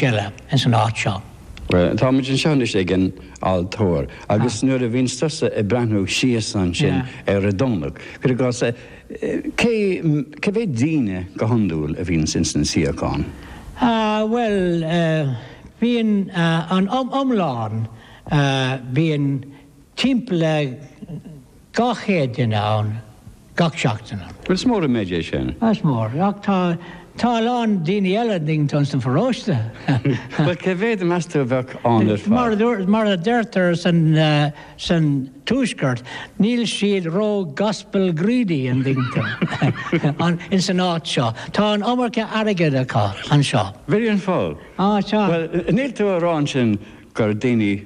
eile ins an áit seo. Táimid anseo anois ag an altóir agus nuair a bhíonns tusa ag breathnú síos ansin ar an Domhnach, cuir i gcás, cé mhéad daoine go hiondúil a bhíonns ins an suíochán? Bhuel, bíonn an iomlán, bíonn timpeall le. Dhá chéad duine ann gach seachtain. Is mór an méid é sin. Is mór, ach tá, tá a lán daoine eile a dtuigeann tú, sa pharóiste. Bhuel, cé mhéad, meas tú, a bheadh ann ar fad? Mar a deirtear san Tuaisceart, níl siad ró-gospel greedy, an dtuigeann tú, ins an áit seo. Tá an iomarca airgid acu anseo. Very well off. Á, sea. Bhuel, níl tú a rá ansin gur daoine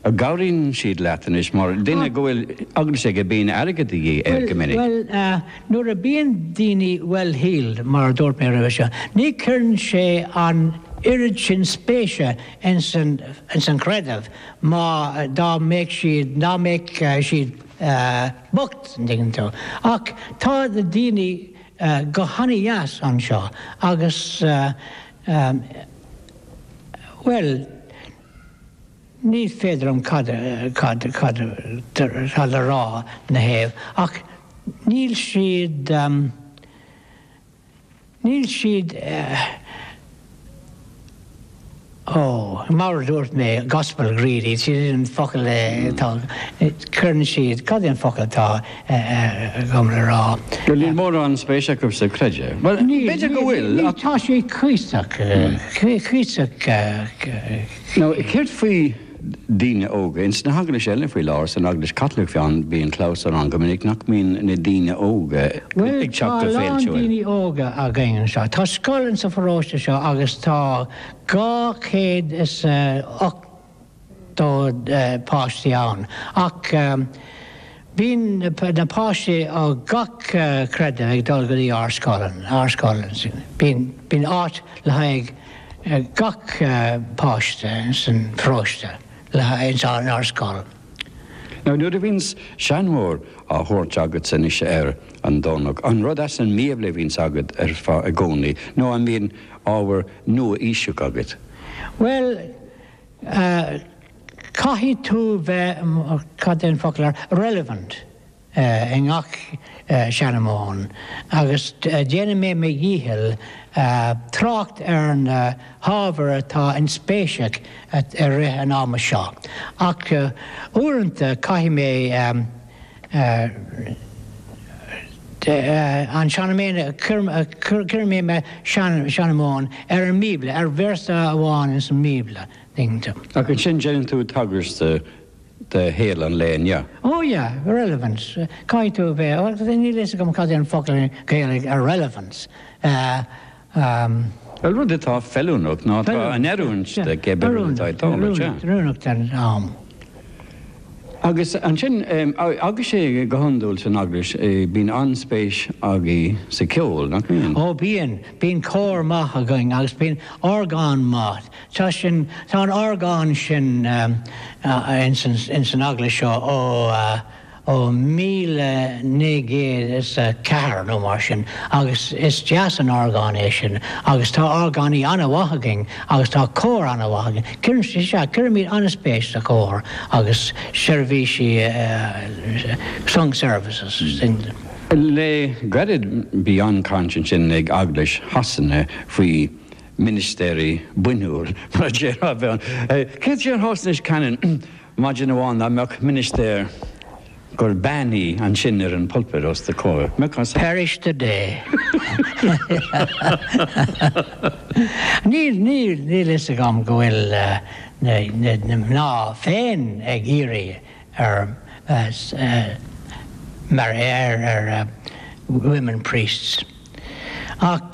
Cabhraíonn siad leat anois mar duine go bhfuil eaglais aige go mbíonn airgead de dhíth air go minic. Bhuel, nuair a bíonn daoine well-heeled, mar a dúirt mé roimhe seo, ní chuireann siad an oiread sin spéise ins an chreideamh ná dá mbeadh siad, dá mbeadh siad bocht, an dtuigeann tú. Ach tá na daoine go han-deas anseo agus, bhuel. Ní féidir liom cad atá le rá ina dtaobh ach níl siad, níl siad, ó, mar a dúirt mé, gospel greedy, is é an focal atá, cuireann siad, cad é an focal atá agam le rá? Go níl mórán spéis acu sa chreideamh. Bhuel, b'fhéidir go bhfuil ach. Tá sé cuíosach, cuíosach. Nó céard faoi daoine óga? Ins na heaglaisí eile faoi láthair, san Eaglais Chaitliceach fiú amháin, bíonn clamhsán ann go minic nach mbíonn na daoine óga ag teacht go feilte uaidh. Bhuel, tá a lán daoine óga againn anseo. Tá scoil insa pharóiste seo agus tá 280 páistí ann ach. Bíonn na páistí ó gach creideamh ag dul go dtí ár scoil ann, ár scoil ansin. Bíonn áit le haghaidh gach páiste san pharóiste le haghaidh, in ár scoil. Now nuair a bhíonns seanmóir á thabhairt agat anois ar an Domhnach, an rud as an mBíobla a bhíonns agat ar fad i gcónaí nó an mbíonn ábhar nua-aoiseach agat? Bhuel, Caithfidh tú bheith, cad é an focal ar, relevant i ngach seanmóin agus déanfaidh mé mo dhícheall trácht ar na hábhair atá inspéise i rith an ama seo ach uaireanta caithfidh mé an tseanmóir, cuirfidh mé mo sheanmóir ar an mBíobla, ar véarsa amháin ins an mBíobla. Ach ansin déanann tú tagairt do shaol an lae inniu. Ó yea, relevance. Caithfidh tú a bheith, níl a fhios agam cad é an focal Gaeilge ar relevance. Bhuel, rud atá feiliúnach nó atá in oiriúint do, cibé rud atá ag dul, an ea? Oiriúnach don am. Agus ansin, agus is é go hiondúil san eaglais, bíonn an-spéis againn sa cheol, nach mbíonn? Ó bíonn, bíonn cór maith againn agus bíonn orgán maith. Tá sin, tá an orgán sin ins an eaglais seo ó, ó míle naoi gcéad is a ceathair nó mar sin agus is deas an orgán é sin agus tá orgánaí an-mhaith againn agus tá cór an-mhaith againn. Cuireann, is ea, cuirimid an-spéis sa chór agus seirbhísí sung services. Le gairid bhí an-chaint ansin ag Eaglais Shasana faoi ministéirí bainniúil, mar a déarfá. Céard é do bharúilse, Canon? Maidin amháin dá mbeadh ministéir gur bean í ansin ar an pulpit os do comhair, mbeadh an. Parish today. Níl, níl, níl fhios agam go bhfuil na, na, na mná féin ag iarraidh ar, as, mar a déarfá, ar women priests. Ach,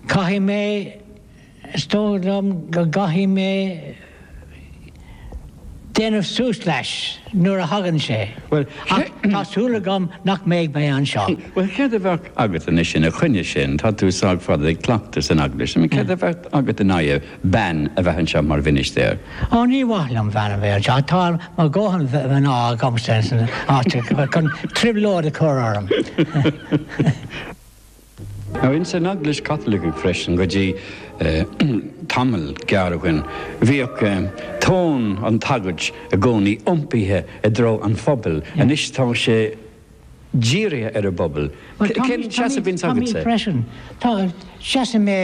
caithfidh mé. is dóigh liom go gcaithfidh mé déanamh suas leis nuair a thagann sé, ach tá súil agam nach mbeidh mé anseo. Bhuel, céard a bheadh agat anois ina choinne sin, tá tú sách fada ag cleachtadh san eaglais, céard a bheadh agat in aghaidh bean a bheith anseo mar mhinistéir? Ó, ní maith liom bean a bheith anseo, tá mo dhóthain mná agamsa insan áit chun trioblóid a chur orm. Now ins an Eaglais Chaitliceach freisin go dtí tamall gearr ó shin bhíodh tóin an tsagairt i gcónaí iompaithe i dtreo an phobail, anois tá sé dírithe ar an bpobal. Cén seasamh a bhíonns agatsa? Tá mé freisin. Tá seasamh mé.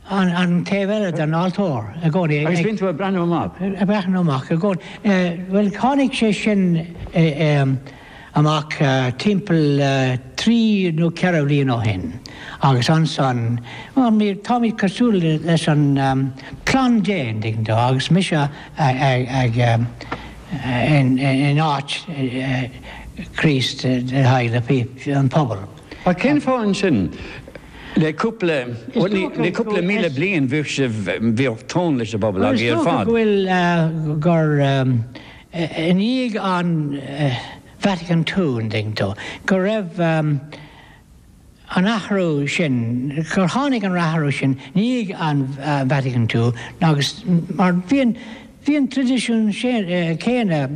an taobh eile den altóir i gcónaí ag. Agus bíonn tú ag breathnú amach. Ag breathnú amach i gcónaí. Bhuel, tháinig sé sin amach timpeall trí nó ceithre bhliain ó shin agus ansan, táimid cosúil leis an chlann Dé, an dtuigeann tú, agus mise ag in áit Chríost le haghaidh an phobail. Ach cén fáth ansin? Le cúpla le cúpla míle bliain bhíodh sibh bhíodh tóin leis an bpobal agaibh ar fad. Is dócha go bhfuil gur i ndiaidh an Vatican ii an dtuigeann tú go raibh an athrú sin gur tháinig an t-athrú sin i ndiaidh an Vatican ii agus mar bíonn bíonn an traidisiún sin céanna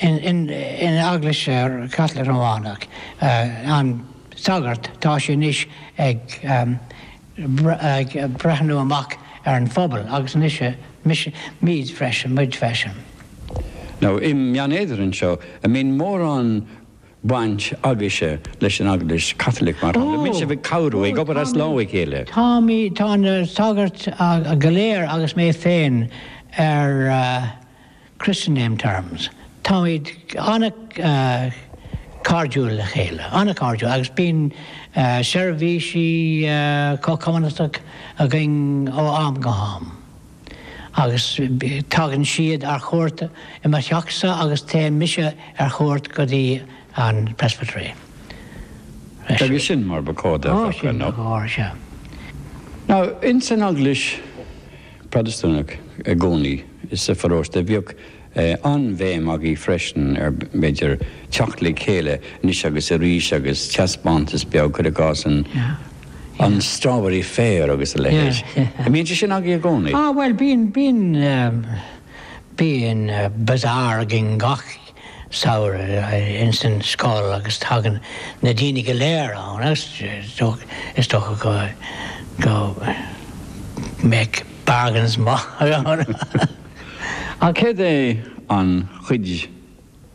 in in in Eaglais Chaitliceach Rómhánach an sagart, tá sé anois ag breathnú amach ar an phobal, agus anois mise, muid freisin, muid freisin. nó i mBeann Éadair anseo, an mbíonn mórán baint agaibhse leis an Eaglais Chaitliceach, mar shampla, bíonn sibh ag cabhrú, ag obair as lámh a chéile. Táimid, tá na sagairt go léir agus mé féin ar. Christian name terms. Táimid an-chairdiúil le chéile, an-chairdiúil, agus bíonn seirbhísí comhchumannta againn ó am go ham. Agus tagann siad ar chuairt i mo theach-sa agus téim-se ar chuairt go dtí an Presbytery. Agus sin mar ba chóir dó. Ó, sin mar ba chóir, sea. Now, ins an Eaglais, Protastúnach i gcónaí sa pharóiste bhíodh an-bhéim agaibh freisin ar, b'fhéidir, teacht le chéile anois agus arís agus teaspeántas beag, cuir i gcás, an Strawberry Fair agus a leithéid. An mbíonn sé sin agaibh i gcónaí? Á, bhuel, bíonn, bíonn, bíonn bazaar againn gach, samhradh ins an scoil agus tagann na daoine go léir ann agus is dócha go mbeadh bargains maith ann. Cad é an chuid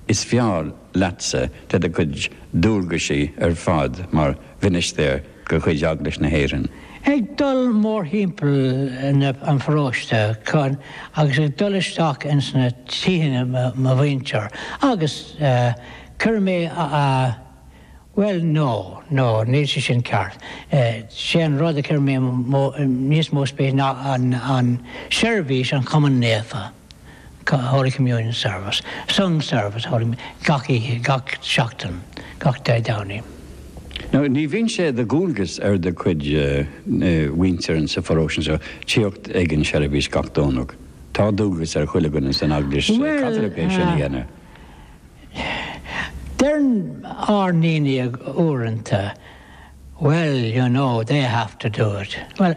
is fearr leatsa de do chuid dualgaisí ar fad mar Mhinistéir? de chuid Eaglais na hÉireann. Ag dul mórthimpeall an pharóiste chun agus ag dul isteach ins na tithe mo mhuintir agus cuireann mé a, bhuel no, no, níl sé sin ceart, sé an rud a chuireann mé níos mó spéise ná an seirbhís, an Chomaoineach Naofa. Holy Communion Service, Sung Service, Holy gach oíche, gach seachtain, gach Dé Domhnaigh. Nó ní bhíonn sé de dhualgas ar do chuid muintire sa pharóiste anseo tíocht ag an seirbhís gach Domhnach. Tá dualgas ar chuile dhuine san Eaglais Chaitliceach é sin a dhéanamh. Bhuel, deireann ár ndaoine uaireanta, Well, you know, they have to do it. Bhuel.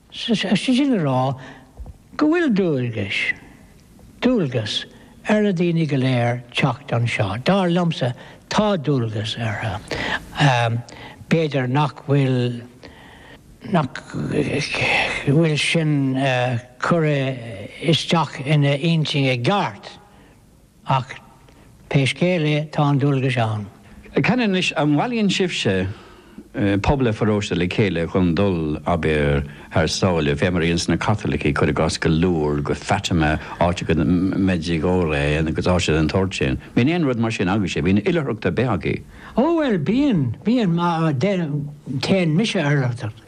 Is é sin le rá go bhfuil dualgais, dualgas, ar na daoine go léir teacht anseo. Dar liomsa, tá dualgas orthu. B'fhéidir nach bhfuil, nach bhfuil sin curtha isteach ina n-intinn i gceart Ach pé scéal é, tá an dualgas ann. Ceann anois, an mbailíonn sibhse pobal an pharóiste le chéile chun dul, abair, thar sáile? Mar théann na Caitlicigh, cuir i gcás, go leor go Fatima, agus go dtí Medjugorje agus áiteanna den tsórt sin. Bíonn aon rud mar sin agaibhse, bíonn oilithreacht ar bith agaibh. Ó bhuel, bíonn, bíonn, mar, téann mise ar oilithreacht.